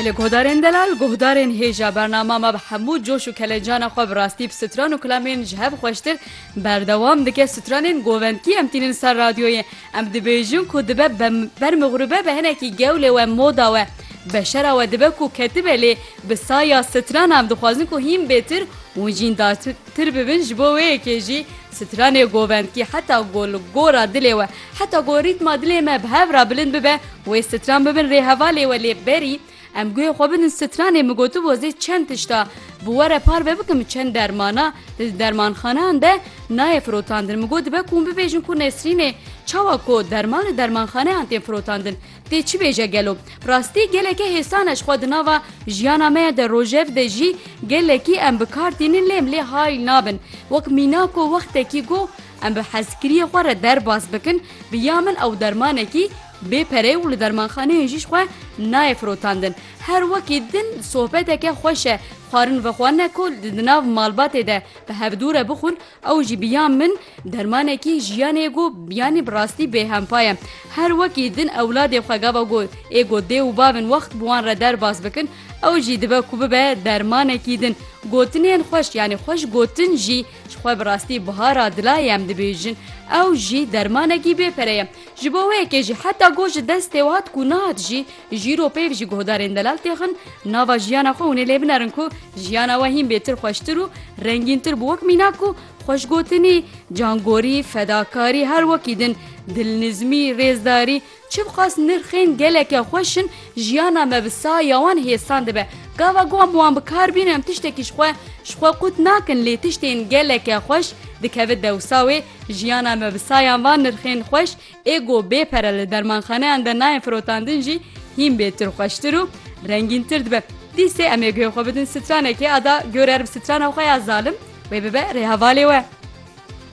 Li guhdarên delal, guhdarên hêja bernama me bi hemû coş û kelecana xwe bi rastî bi stran û kilamên ji hev xweştir berdewam dike stranên govendkî em tînin ser radyoyê em dibêjin ku dibe ber mixrûbe be hinekî gewlê we moda we beşera we dibe ku ketibe lê bi saya strana em dixwazin ku hîn bêtir û jîn Tir bibin ji bo wê yekê jî stranê govendkî heta ku li gora dilê we heta ku rîtma dilê me bi hev re bilind bibe wê stran bibin rê hevalê we lê berî em guhê xwe bidin stranê min gotibû ez ê çend tişta bi we re parve bikim çend dermana di dermanxaneyan de nayê firotandin min got dibe ku min bibêjin ku nesrînê çawa ku derman li dermanxaneyan tên firotandin Tê çi bêje gelo? Rastî geleke hêsan e ji xwe di nava jiyana me de rojev de jî gelekî em bi kar tînin lê em lê hayl nabin. Wek mîna ku wextekî got em bi hezkiriyê xwe re derbas bikin bi ya min ew dermanekî bê pere û li dermanxaneyên jî ji xwe nayê firotandin. Her wekî din sohbeteke xweş e xwarin vexwe ne ku di nav malbatê de bi hevdû re bixwin Ew jî bi ya min dermanekî jiyanê êgo yanî bi rastî bêhempa ye. Her wekî din ewladê xwe gava ku êgo dê û bavên wext bi wan re derbas bikin, ew jî dibe ku bibe dermanekî din. Gotinên xweş yanî xweş gotin jî ji xwe bi rastî bihara dilayê em dibêjin. Ew jî dermanekî bê pere ye. Ji bo wê yekê jî heta got ji destê we hat ku nehat jî Jîro peyv ji guhdarên delal têxin nava jiyana xwe hûnê lê binerin ku jiyana we hîn bêtir xweştir û rengîntir bi wek mîna ku xweşgotinî, cangorî, fedakarî her wekî din, dilnizmî, rêzdarî, çibiqas nirxên geleke xweş in jiyana me bi saya wan hêsan dibe. Gava ku em wan bi kar bînin em tiştekî ji xwe ji xwe qut nakin lê tiştên geleke xweş dikeve dewsa wê jiyana me bi sayan van nirxên xweş Ê ku bê pere li dermanxaneyan de nayên firotandin jî hîn bê tirxweştir û rengîntir dibe. Dîsê em ê guhê xwe bidin stranekê ada gor erm strana xwe ya zalim wê bibe rêhevalê we.